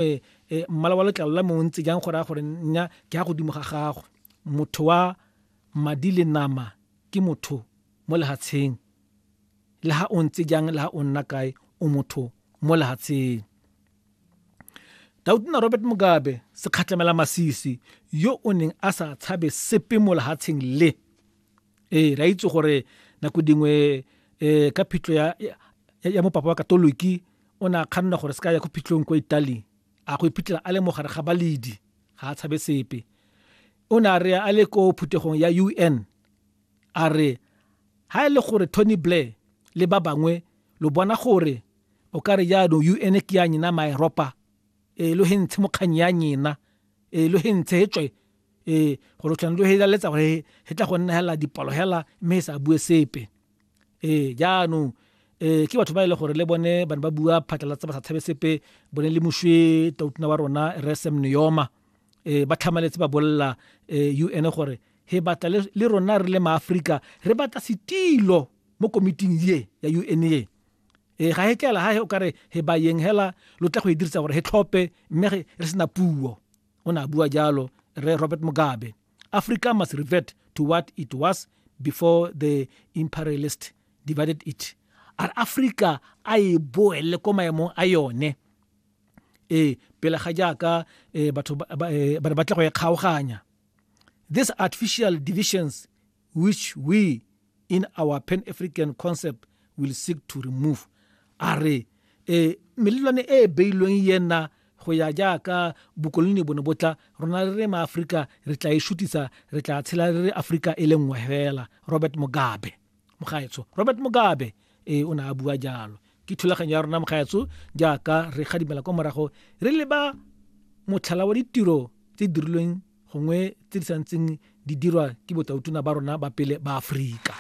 um mmala wa letlalo la mongwe ntse jang go raya gore nna ke ya godimo ga gagwe motho wa madi le nama ke motho mo lehatsheng le ha o ntse jang le ha o nna kae o motho mo lehatsheng dautona robert mugabe sekgatlhamela masisi yo o neng a sa tshabe sepe mo lehatsheng le ee re a itse gore nako dingwe um ka phitlho ya mopapa wa katoliki O ne a kganna gore se ka ya ko phitlhong kwa Italy, a go iphitlhela a le mo gare ga baledi, ga a tshabe sepe. O ne a re a le ko phuthegong ya UN, a re, Ha e le gore Tony Blair le ba bangwe lo bona gore o ka re jaanong UN ke ya nyena Maeropa, ee lo he ntshe mokganyi ya nyena, ee lo he ntshe he tswe, ee gore tlhone lo he laletsa gore he tla go nna hela dipalo hela mme he sa bue sepe. ee jaanong eh ke batho ba ile e gore le bone ba ne ba bua phatlalatsa ba sa tshabe sepe bone le moshwe tautuna wa rona re sem neoma eh ba tlhamaletse ba bolla eh UN e gore he batla le rona re le maafrika re batla setilo mo komiting ye ya UN ye eh ga he tlela ha he o kare he ba yeng hela lo tla go e dirisa gore he tlhope mme re sena puo o ne a bua jalo re robert mugabe africa must revert to what it was before the imperialist divided it a re africa a e boele ko maemong a yone ee pele ga jaaka eh, batho eh, ba ne ba tle go e kgaoganya these artificial divisions which we in our pan african concept will seek to remove a re e melelwane e e beilweng yena go ya jaaka bokoloni bone botla rona re re maaforika re tla e shutisa re tla tshela re re aforika e le nngwe fela robert mugabe mogaetsho robert mugabe e o ne a bua jalo ke thulaganyo ya rona mogaetsho jaaka re gadimela kwa morago re leba motlhala wa ditiro tse dirilweng gongwe tse di santseng di dirwa ke botautona ba rona ba pele ba Aforika.